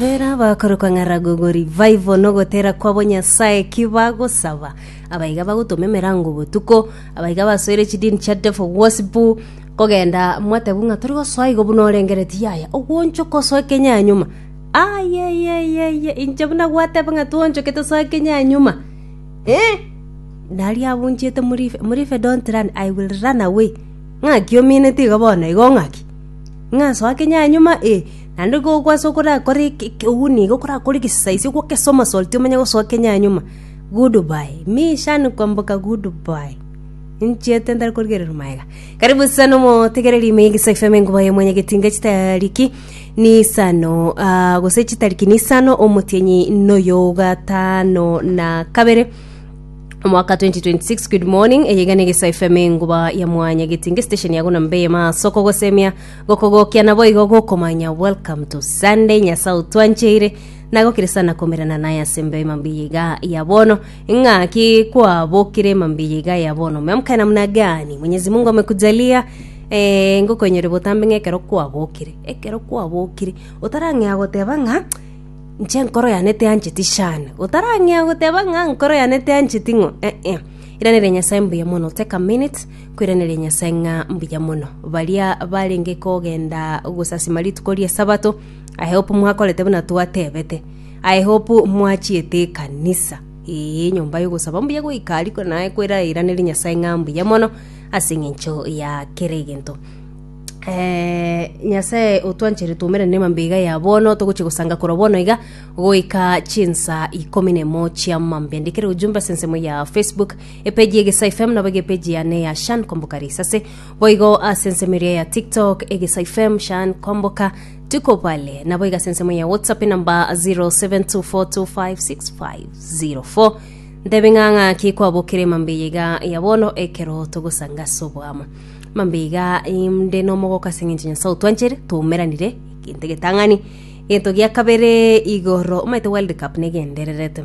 Bera abakorokwa ng'a Ragogo Revival nogotera kwabo Nyasae ki bagosaba? Abaiga bagotoma emerango botuko, abaiga basoire chidini chia devil worship, kogenda mwatebu ng'a tori gosoa igo buna orengereti yaya ogwonchoka osoe kenyanyuma. Ayeyeyeye inche buna gwateba ng'a twonchoke tosoe kenyanyuma. Eh! Nari abunchete Murife, Murife don't run, I will run away. Ng'aki omineti igo bono igo ng'aki? Ng'a soa kenyanyuma eh. Naende ekero gwase okorakore oku nigo okorakore egesaisio gwokese omosoloti omenye gosoa kenyanyuma. Good bye. Mi shani kwamboka good bye. Ninchiete ntari korigereria maega. Karibu sana omotegereri ime egisa FM enkuba ya mwenye getinga chitariki ni isano ah, gose chitariki ni isano omotienyi noyo gatano na kabere omwaka 2026 good morning eyegane gesa fm enguba ya mwanya getinge station yago na mbe maasoko gosemia Gokogokia naboigo gokomanya welcome to Sunday Nyasae otwancheire nagokirisana komerana naye ase mbeo ema mbiya iga ya bono ng'a ki kwabokire ema mbiya iga ya bono umeamka namna gani Mwenyezi Mungu amekujalia eh, ngokonyore botambe ng'a ekero kwabokire ekero kwabokire otarang'ea goteba ng'a nche nkoro yane teancheti shana otarang'ea goteba ng'a nkoro yane teancheti ng'o eh, eh. iranere nyasae mbuya mono take a minute Kwiraneria Nyasae ng'a mbuya mono. Baria barenge kogenda gosasima rituko ri'Esabato, I hope mwakorete buna twatebete. I hope mwachiete ekanisa, ee, enyomba y'ogosaba mbuya goika ariko naye kwirairaneria Nyasae ng'a mbuya mono ase eng'encho ya kera egento. Eh, Nyasae otwanchere twaumera nema mbeiga ya bono, togochia gosanga korwa bono iga goika chinsa ikomi nemo chiamambia. Ndikera ojumbe ase ensemo ya Facebook, Epeji y'Egesae FM nabo iga epeji yane ya Shan Komboka Risase. Boigo ase ensemo eria ya TikTok, Egesae FM, Shan Komboka, Tuko Pale. Nabo iga ase ensemo ya WhatsApp enamba 0724256504. Ntebe ng'a ng'aki kwabokire mambe yega ya bono ekero togosanga ase oboamo. Mambe iga inde nomogoka ase eng'encho Nyasae otwanchere, twaumeranire, egento egetang'ani. Egento gia kabere igoro, omaete World Cup negendererete.